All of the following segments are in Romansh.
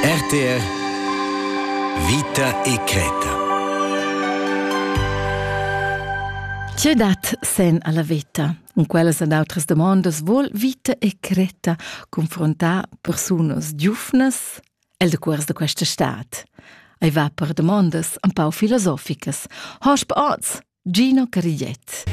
RTR Vita e creta. Tge dat sen alla vita? Cun quellas ed outras domondas vol vita e creta confrontar persunas giufnas el de cuors de questa stad. Ei va per domondas un pau filosoficas. Hosp oz! Gino Cagliet.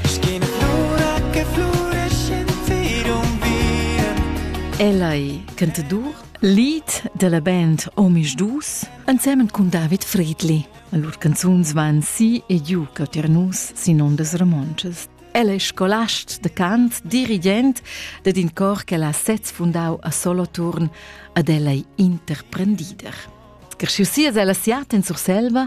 Ella è cantadur, lead della band Omisch Dus, ensemen con David Friedli. Lur canzuns van si e giù caternus sin ondas romontschas. Ella è scolast de cant, dirigent ed in cor che l'ha sez fundau a Soloturn, ad ella è interprendider. Cresciusias ella siat en Surselva,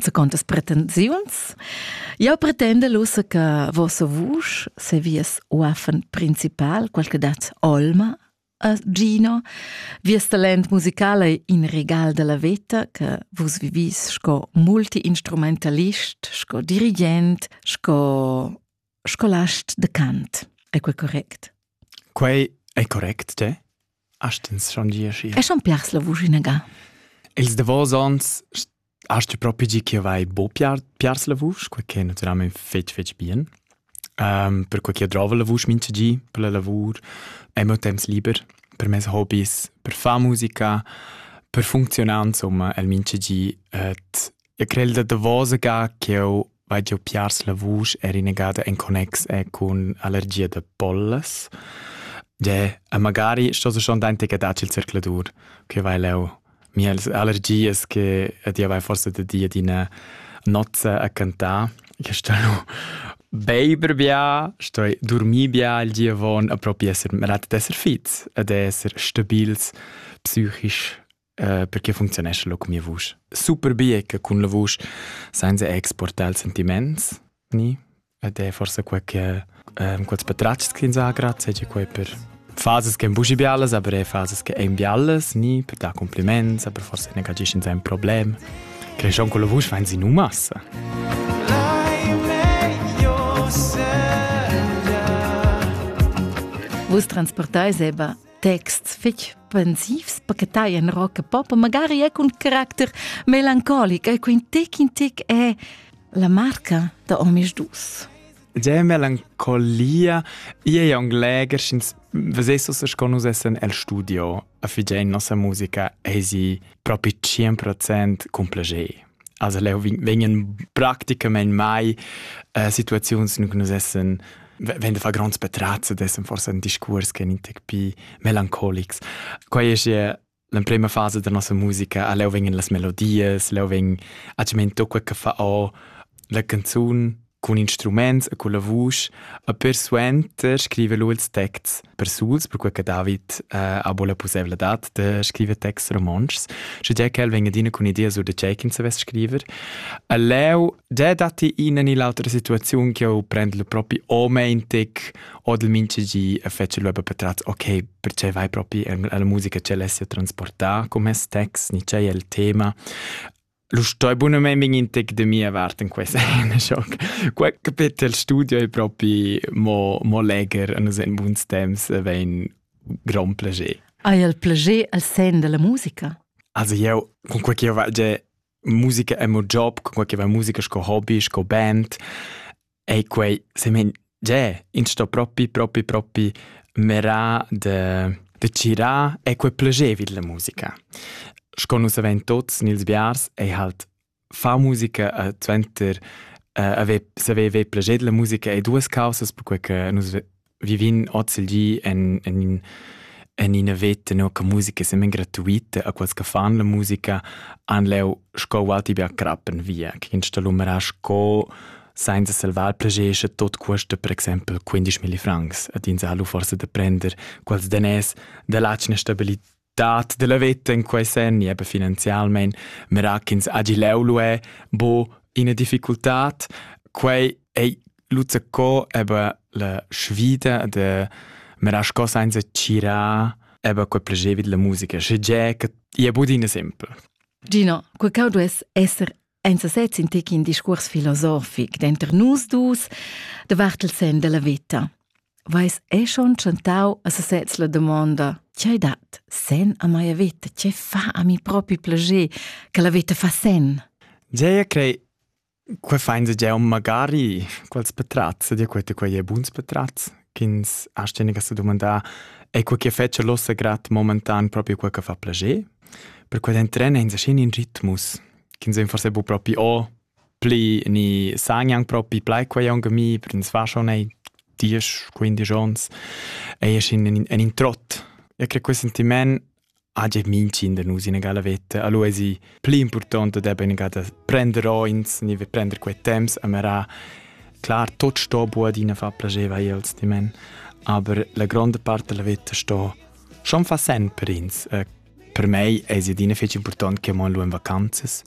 Secondas pretensiuns. Eu pretendel ussa che vossa vusch se vies uaffen principal, qual che dat olma a Gino, vies talent musical è in regal della veta che vus vivis sco multiinstrumentalist, sco dirigent, sco Scolast de Kant. È quel correct? Quei è correct, te? Astens schon dir schi. E schon piars la vusch inaga? Els davos ans hast du proprio di che vai bo piar, piars la vusch, quel che naturalmente fetg fetg bien. Um, per quel che drova la vusch mince di, per la lavur, è mo temps liber, per mes hobbies, per far musica, per funzionare, insomma, el mince di et E quel da davosa ga ch'jeu vai giu piars la vusch era inagada en connex e cun allergia da pollas. Gie, e magari sto se schon dentec a datg il circladur, che vai leu mia allergias che ed io vai forse da di ad ina nozza a cantar. Che sto lu beiber bia, sto dormir bia il giavon a propi esser rat d'esser fits ed esser stabils psychisch Uh, perché funzionescha lo con mia vusch? Super bie che cun la vusch senza exportare il sentiments ni ed è forse quel che um, quels patratgs che ins ha grazie è quel per fases che busi bialas, aber è fases che ein bialas, ni per dar compliments, aber forse ne cagisci in un problem. Cresciamo con la voce fa in massa. Vus transportai seba texts fetg pensivs pachetai en rock e pop, magari è cun caracter melancolic, e quin tec in tec è la marca da homis dus. Sehr melancolia, ia è un leger, sch'ins vesessus es con usessen el studio a figein nossa musica, ei si propi 100% cum plager. Also leu vegnan practicamein mai äh, situaziuns che nus essen wenn de fa gronds petrazze dessen forse ein discurs che in tec pi melancolics quai es ja l'emprema fase da nossa musica a leu vengen las melodies leu veng a cement tocca che fa o la canzun Cun instruments e culla vusch e persuenter scriver lu ils texts persuls, perquei che David eh, ha buca la pusseivladad da scriver texts romontschs, sche che el vegn adina cun idea sur da tgei ch'ins savess scriver. E leu già datti ina ni l'autra situaziun che eu prend il propi o meintig o del minchegi e fece lu per tratz, ok, perché vai propi alla musica ce l'essi a transportare con mes text, ni c'è il tema. Lu stoi bunamein vegnir in tec da mia vart en questa schoc. Quei capetel studio è propi mo, mo leger a nus en buns temps vein gran plager. Hai il plager al sen della musica? Also io con quei che io faccio musica è mo job, con quei che va musica sco hobby, sco band. Ei quei semen gie, ins sto propi propi propi mirar de de tgirar e quei plagevit la musica. Sco nus havein tuts nels biars ei halt far musica e suenter eh, haver saver ver plaged la musica ei duas caussas perquei che nus vivin oz il di en, en, en ina veta no, che musica semen gratuita a quels che fan la musica han leu sco walti bia crappen via che installumerà sco senza salvar plegesce tot cuosta per exempel 15.000 francs ad ins ha lu forse da prender quels danès da latschna stabilità dat della veta in quei senn e finanzialmein mera ch'ins hagi leu luè bo ina difficultad quei ei luzza co eba la sfida de mera sco senza gira eba quei plagevi della musica sche ge che ia budina sempre Gino, quei cau duess esser Ein sesez in tec in discuors filosofic denter nus dus davart il sen della veta. Vais è schon chantau a sesez la domonda Tgei dat sen a mia veta? Tge fa a mi propi plager che la veta fa sen? Gea, crei, que fain se gea magari quals petrazze, di quete quei è buns petrazz, ch'ins ha steniga se domandà, è quel che fece l'ossa grat momentan proprio quel che fa plager? Per quel entren in se in ritmus, ch'ins ein forse bu propi o pli ni san anc propi plai quei aunc a mi, per ins va schon ei diesch, quindisch ons, ei es in, in, in trott. E credo quel sentiment ha già mincin da nus in egala veta. Allora è più importante da ben egada prender ins, ni prender quei temps, amara Klar, tot sto buadina fa piaceva els di men, aber la grande parte della vita sto schon fa sen per ins. Eh, Per mei es adina fich important che mon lù in vacanzas,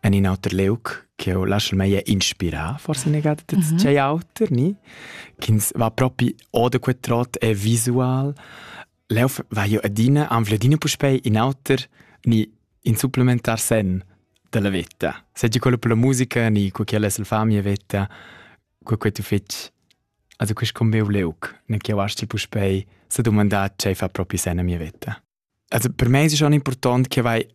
en in auter liug che eu lascialmai inspirà, forse negate da mm -hmm. tgei auter, ni? Ch'ins va propi o da quel trot è visual. Leu va io adina, anfl adina puspei in auter, ni in supplementar sen della vetta. Seggi quello per la musica, ni cu quella è la famiglia vetta, cu quei tu fetg Also quest combeu leug, ne che wasci puspei se domandà tgei fa propi sen a mia vetta. Also per me es schon important che vai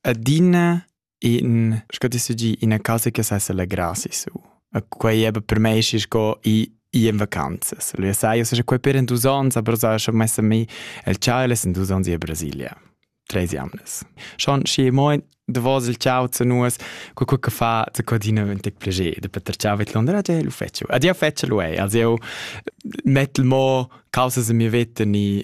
adina in sco ti sagi ina casa che sa s'allegrasse su. E quei eben per me es sco i i in vacanzas. Lui sai, io so quei per in dus ans, aber so schon messa mi el ciao in dus ans in Brasilia. Tres jamnes. Schon schi moi de vos il ciao zu nus, co co che fa zu codina un tec plaisir, de Peter ciao mit Londra, ja lu fetcho. Adia fetcho lui, also io mettel mo causas in mia vita ni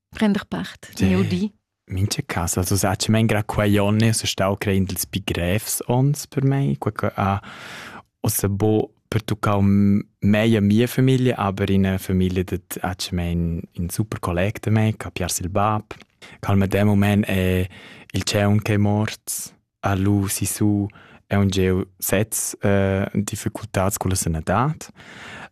prender part nel di. Mincha cas, also saccio men gra quai onne es stau creend ils pi grevs ons per mei, quai che ha ossa bo pertuccau mei a mia famiglia, aber in una famiglia dat ha men in super collega da me, che ha piars il bab, che al medem moment è il tscheu che è mort. ha lu sissu aunc sez difficultads culla sanadad.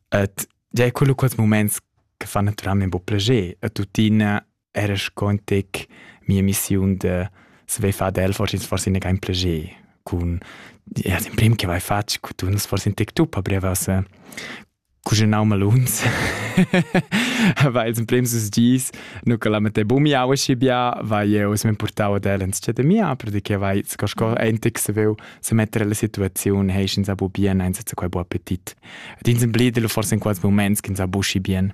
Et gia è quello quels moments che fa naturalmente buca plascher. E tuttina era scontic mia missiun de se vai far del forse forse ne kein plascher cun ja den prim che vai fatg cu tu forse in tek tu pa brevas cuginau maluns va ils emprems dus dis nu che la mette bumiau aschi bia va jeu se mi portau ad el ins de mia perché vai sco sco entic se veu se mettere la situaziun hei ins abu bien eins zu quei bu appetit ed ins emblide forse in quals moments ins abu schi bien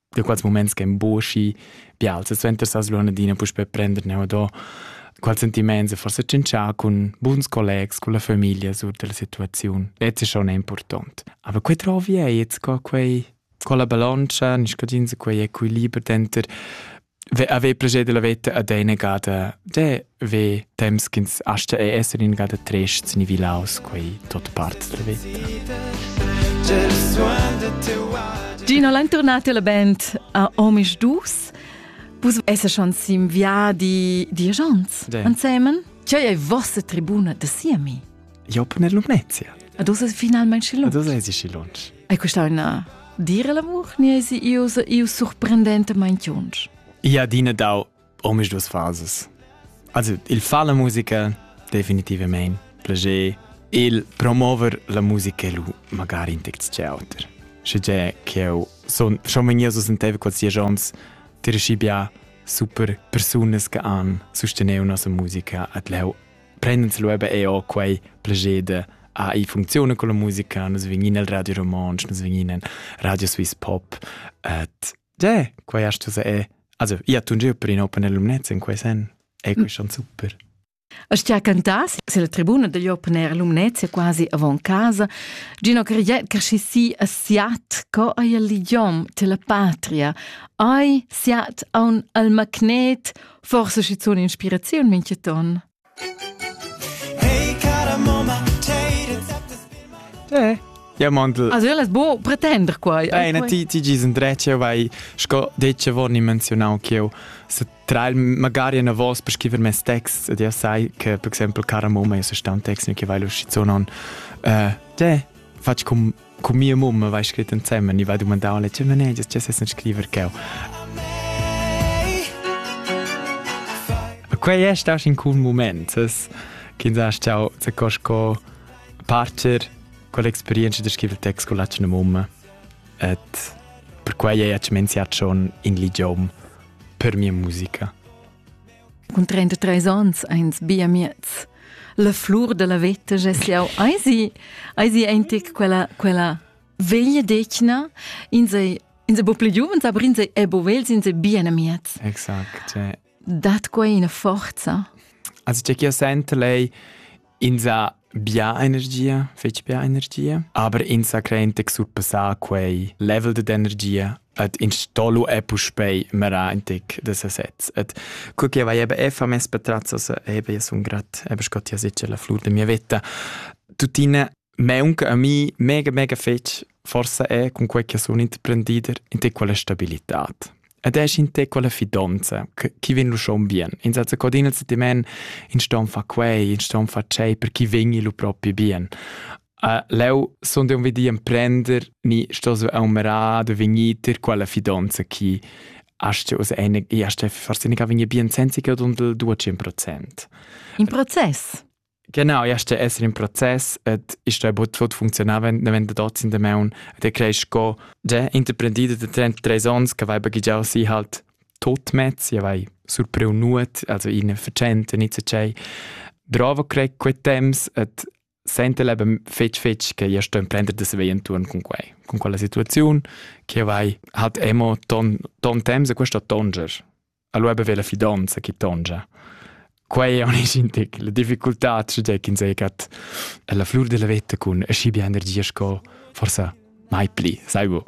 da quels moments che emboschi bial se suenter sa slonadina puspe prender ne do qual sentiments e forse cencha con buns collegs con la famiglia sur della situazione e ce schon important aber quei trovi ei jetzt co quei con la baloncia nis codins quei equiliber denter Avevi proget della veta ad eine gada de ve temps ch'ins asta e essere in gada trest ni vilaus quei tot part della veta. Gino l'entornati alla band a Omisch Dus. Vus esse schon sim viadi diagions ansemen? C'è è vostra tribuna de siemi? Jau pon en Lumnezia. Ad uss es finalmain schilunsch. Ad uss esi schilunsch. Hai questà una dire l'amor, ni esi iu iu surprendentamain chiunsch? Ia adina dau omis dus fases. Also, il fa la musica, definitivamente. Plager, il promover la musica lu magari in text c'è auter. Sche che eu son schon wenn ihr so senteva qualsiasi ons dir schi bia super persunas che han sostener una musica at leu prend'ins lu eben eau quei plager de ah, i funcziuna con la musica, nus vegnin al Radio Romontsch, nus vegnin in Radio Swiss Pop, et de, quei hast du se è. Also, io tu giu per in open alumnez in quei sen, è quei schon super. A stia cantas, se la tribuna degli open air alumnez è quasi avant casa, Gino Cariet crescissi a siat co ai l'idiom te la patria, ai siat a un al magnet Forse schizun inspiraziun mincheton. Eh. Ja, Mandl. Also, io las bo pretender quai. Bene, ti, ti gis indrece, vai, sco detto, vorni menzionau che io, se tra il, magari una voce per scrivere mes text, ed io sai che, per esempio, cara mamma, io sono un text che vai lo schizonon, eh, te, faccio com Cu mia mamma vai scrit ensemen, i va dumandar alla tge manegias tge sessen scriver cheu. Quei è stato in cun moment, che sa stau se cosco parcher con l'experienza di scrivere text con la tua mamma. Et per quei è accimenziato schon in l'idiom per mia musica. Cun 33 onns eins bia miez. La flur dalla veta gess jau eisi, eisi eintic quella, quella veglia decna, in sei, in sei bo pli giuvens, aber in sei ebo vels, in sei bien amiez. Exakt. Cioè. Dat quei ina forza? Also c'è chi sente lei Ins ha bia energia, fetg bia energia, aber ins sa creen che surpassà quei level de energia et in stolu è puspei merantic de sesez et co che vai eben effa mes patrazos eben io sun grat eben scott ja sicher la flur de mia vetta tuttina Meunca a mi mega mega fetg forsa è cun quei che sun interprendider in te quella stabilitad. Ed è in te quella fidonza chi vegn lu schon bien. In senza codina se ti men in ston fa quei, in ston fa tschei per chi vegni lu propi bien. Uh, leu sun dei un vedi emprender ni sto so aumera de vegnir ter quella fidonza chi hast us eine, hast forse nicht vegni bien senza che dundel 200%. In process. Genau, ja ste esser in proces et iste bod tot funzionava davent da dort in de meun et creis sco de interprendida de 33 ons che vai baghigiau si halt tot mezz ja vai surpriu nuot also in vercente nicht so sei bravo crei quei temps et sente leben fetg fetg che io sto imprendere de svei intorn con quei con quella situazione che vai hat emo ton ton temps e questo tonger Allora beve la fidanza chi tongia. Quei è un intic, la difficultà c'è che ins è cat la flur della vetta cun aschi bia energia sco forse mai pli, sai bu.